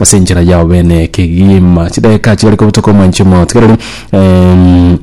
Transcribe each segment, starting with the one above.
ase enchera yao bene ekegima chidageka chigare kobutoka omwanche omoto iga riria em,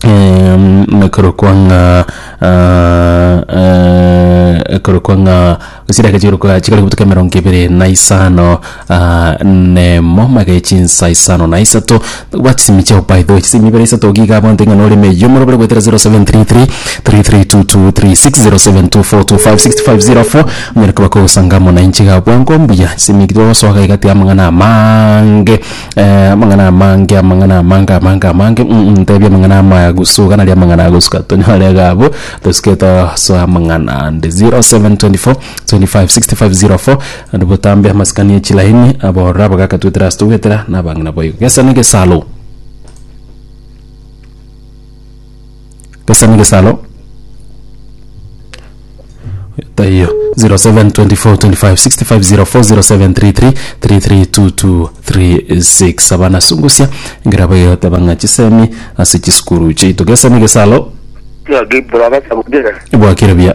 em, ekorokwa ng'a ah, eh, ekorokwa ng'a chidageka chikorokwa chigare kobutoka emerongo ebere na isano ah, nemo magere chinsa isano na isato Gwa chisemi chiao by the way chisemi ibere isato giga abanto ing'ana oreme eyo morobere gwetera 0733 332236 0724256504 onyare koba kogosanga amo nainche iga bwango mbuya chisemi eki twagosoa iga tiga amang'ana amaange eh, amang'ana amaange amang'ana amaange amaange amaange mm ntebia amang'ana amaya gusu iga nari amang'ana agosuka tonyore iga abwo tosuke tosoe amang'ana ande 0724256504 Naende botambe amasikani e chilaini, abororo abagaka twetera ase togwetera, na abang'ina boigo. Gesa negesalo. Gesa negesalo. Taiyo 07242565040733332236 abana sungusia ngera boyo tabang'a chisemi ase chisukuru chiaito gesa negesalo Gaki bura basa gutira. ebwakire buya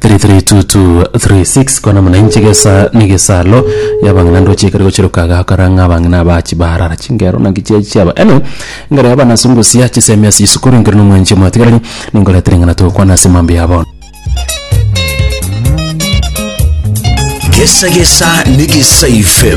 332236 kona muna inche gesa negesalo yabang'ina ndoche ekero gochiroka gakora ng'a abang'ina aba chibarara chingero naki chia chiaba anyway ngare aba nase ngosia chisemi ase isukuru nkere nomwanchi omwatigareri ninkorete ring'ana togokwana ase mambia ya bono Gesa Gesa ni Gesa FM.